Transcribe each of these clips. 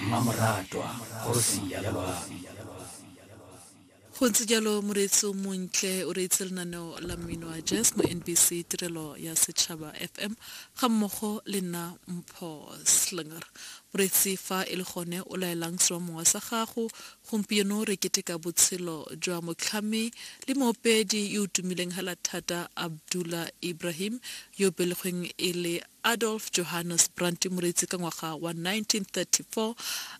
mmamoratwa kgosi ya lebami Go ntse jalo, moreetsi o montle o reetse lenaneo la mmino wa jazz mo NBC Tirelo ya Setšhaba FM ga mmogo le nna Mpho Slinger. Moreetsi fa e le gone o laelang seromongwa sa gago, gompieno re keteka botshelo jwa motlhami le moopedi yo o tumileng hela thata Abdullah Ibrahim yo o belegweng e le Adolf Johannes Brandt Moreetsi ka ngwaga wa 1934,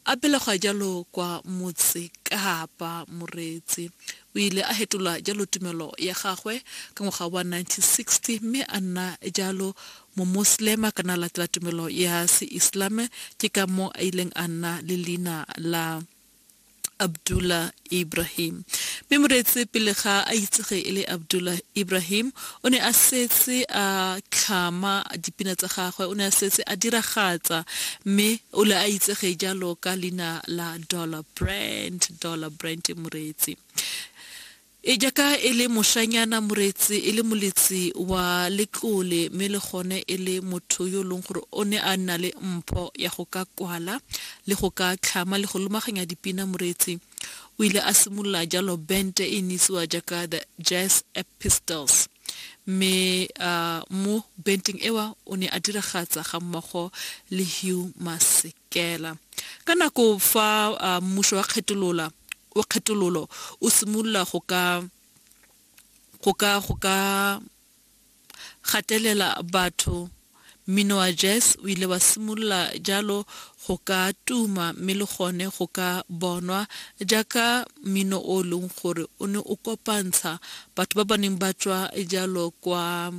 a belegwa jalo kwa Motse Kapa. Moreetsi o ile a fetola jalo tumelo ya gagwe ka ngwaga wa 1960 mme a nna jalo Momoselema kana a latela tumelo ya Seislame, ke ka moo a ileng a nna le leina la. Abdullah Ibrahim. Mme Moretse pele ga a itsege e le Abdullah Ibrahim, o ne a setse a tlhama dipina tsa gagwe, o ne a setse a diragatsa mme o le a itsege jalo ka leina la Dollar Brand, Dollar Brand Moretse. E jaaka e le moshanyana moretsi, e le moletsi wa letlole mme le gone e le motho yo e leng gore o ne a nna le mpho ya go ka kwala le go ka tlhama le go lomaganya dipina moretsi o ile a simolola jalo bente e ne itsiwa jaaka The Jazz Epistles mme uh, mo benteng ewa o ne a diragatsa ga mmogo le Hugh Masekela ka nako fa uh, mmuso wa kgetolola wa kgetololo o simolola go ka go ka go ka gatelela batho mmino wa jazz o ile wa simolola jalo go ka tuma mme le gone go ka bonwa jaaka mmino o e leng gore o ne o kopantsha batho ba ba neng ba tswa jalo kwa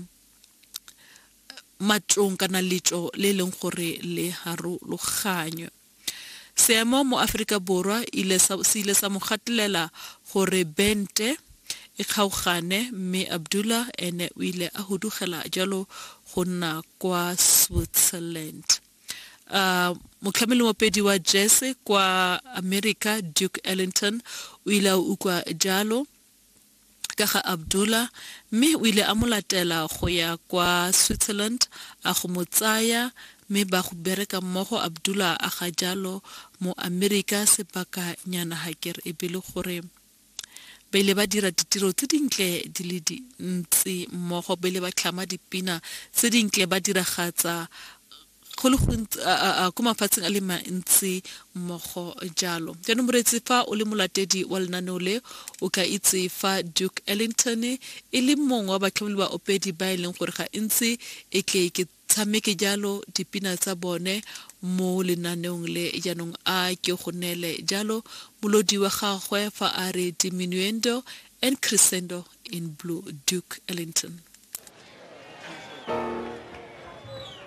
matlong kana letso le e leng gore le harologanywe Seemo mo Aforika Borwa ile sa se ile sa mo gatelela gore bente e kgaogane mme Abdullah ene o ile a hudugela jalo go nna kwa Switzerland. A motlhameli mopedi wa jersey kwa America Duke Ellington o ile a utlwa jalo. ka ga Abdullah mme o ile a mo latela go ya kwa Switzerland a go mo tsaya mme ba go bereka mmogo Abdullah a ga jalo mo Amerika sebaka nyana ha ke re e be le gore ba ile ba dira ditiro tse dintle di le dintsi mmogo ba ile ba tlhama dipina tse dintle ba diragatsa go le gontsi ko mafatsheng a le mantsi mmogo jalo jaanong moreetsi fa o le molatedi wa lenaneo le o ka itse fa duke ellington e le mongwe wa batlhomeli ba opedi ba e leng gore ga ntsi e tle ke tshameke jalo dipina tsa bone mo lenaneong le jaanong a ke go neele jalo molodi wa gagwe fa a re diminuendo and crescendo in blue duke ellington